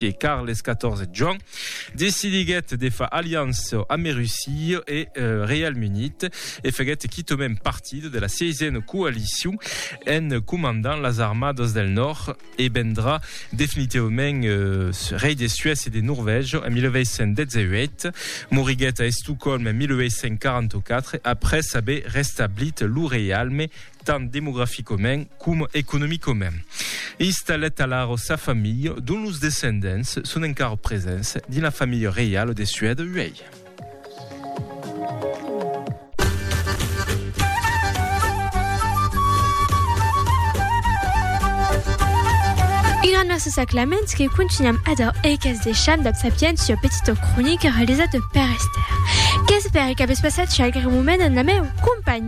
e Carles XIV Joan decidiguèt de far aliança amé Russia e Reialme Unit e faguèt quitòmem partida de la Sièisena Coalicion en comandant las armadas del Nòrd e vendrà definitivament rei de Suècia e de Norvègia en 1818. Moriguèt a Estocòlm en 1844 après aver restablit lo reialme tant demograficament coma economicament. Installet a Laro sa familha, dont los descendents son encara presents dins la familha reiala de Suède uèi. Merci sa Clement que continuem ador e qu'es deixam dab sapiència petita cronica realizada per Esther. Qu'espère qu'avètz passat qualque moment en la meu companhia.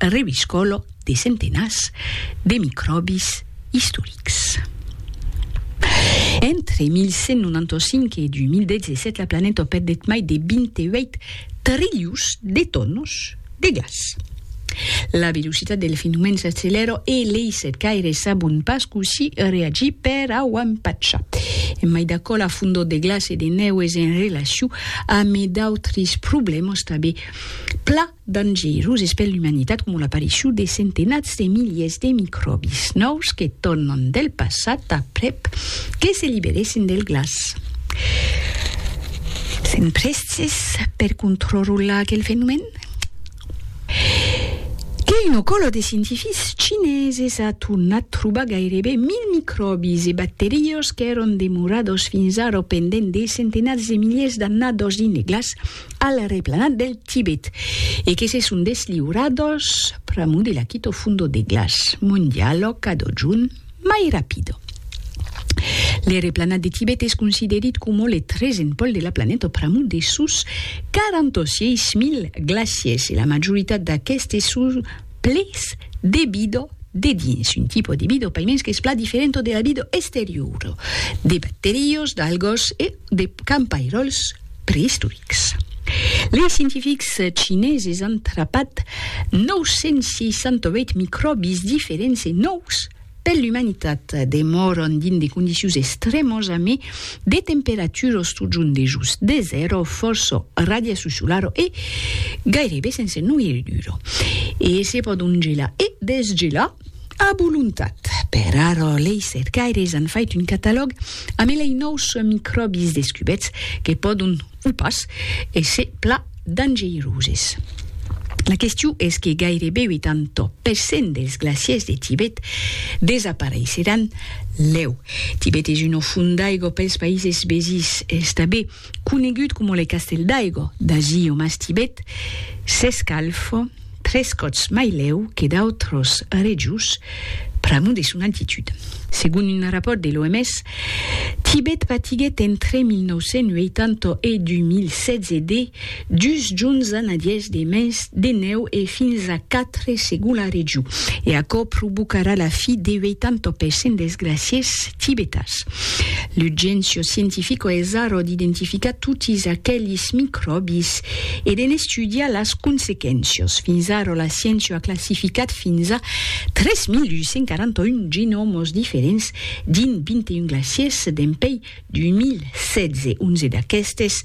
reviscòlo de centenats de micròbis istorics. Entre 1195 e 2017 la planeta perdèt mai de 28 trilhons de tonos de gas. La velocitat del fenomèn s'accelèra e leis cercaires sabon pas cossí reagir per au empachar. E mai d'aquò, la fondor de glaç e de nèu es en relacion amé d'autres problèmas tanbé pla dangeroses per l'umanitat coma l'aparicion de centenats de miliers de micròbis nòus que tornan del passat aprèp que se liberèssen del glaç. Sèm prèstes per contrrolar aquel fenomèn? Qu'ei lo color de scientifics chineses a tornat trobar gaireben mil micròbis e bacteriós qu'èron demorados fins ara pendent de centenats de miliers d'annados dins de glaç al replanat del Tibet e que se son desliurados pr'amor de l'Akito Fundo de Glaç, Mondialo Cado Jun mai rapido. Le replanat de Tibet es considerit coma le tresen pòl de la planeta pr'amor de sos 46.000 glaciers e la majoritat d'aquestes son ples de vida de dins, un tipo de vida paimens qu'es plan diferent de la vida exteriora, de bacterios, d'algos e de campairòls. preistorics. Lei scientifics chineses an trapat 968 micròbis diferents e nòus per l'umanitat. Demòran dins de condicions extrèmas a mai de temperatura o stojant dejós de zèro, fòrça radiacion solara e gairebe sense noirriura. E se pòdon gelar e desgelar. A volontat. Per ara, lei cercaires an fait un catalòg amé lei nòus micròbis descubèts que pòdon, o pas, èsser pla dangeiroses. La question es que gairebe 80 per cent dels glaciers de Tibet desapareisseràn lèu. Tibet es un o font d'aigua pels païses vesins, estabé. conegut coma le castèl d'Aigo, d'ací o mas Tibet, s'escalf tres còps mai lèu que d'autros rejos pr'amor de son altitud. Segon un rapòrt de l'OMS, Tibet patiguèt entre 1980 e 2016 de Dus junhs a nadièrs de mes de nèu e fins a quatre segon la regiu, e aquò provocarà la fi de 80 per cent dels glaciers tibetans. L'urgéncia scientifica es ara d'identificar totis aquelis micròbis e de n'estudiar las consequéncias. Fins ara la sciéncia a classificat fins a 3.841 genòmas diferents dins 21 glaciers dempuèi 2016, onze d'aquestes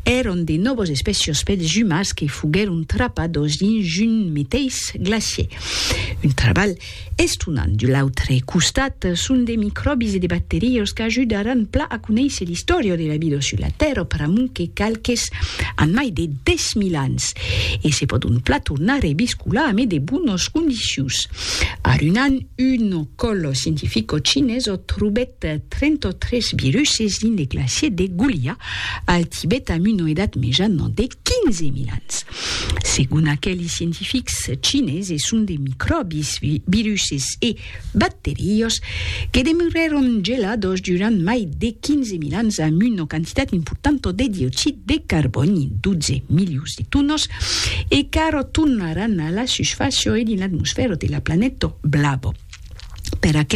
èran de nòvas espècias pels jumas que foguèron trapadas dins un meteis glacièr. Un trabalh estonant. De l'autre costat, son de micròbis e de bacterias qu'ajudaràn plan a conéisser l'istòria de la vida sus la Tèrra pr'amont que qualques an mai de 10.000 ans e se pòdon plan tornar rebiscolar amé de bonas condicions. Arunan, un còl scientifica cinesa trobèt de 33 biruses dins le glacier de Goulia, al Tibet amb una edat mejana de 15.000 ans. Segon aqueli scientifics chineses son de micròbis, viruses e bacteriós que demorèron gelados durant mai de 15.000 ans amb una quantitat importanta de dioxid de carbòni, 12 milions de tonas, e qu'ara tornaràn a la susfàcia e dins l'atmosfèra de la planeta blava. Per aquela,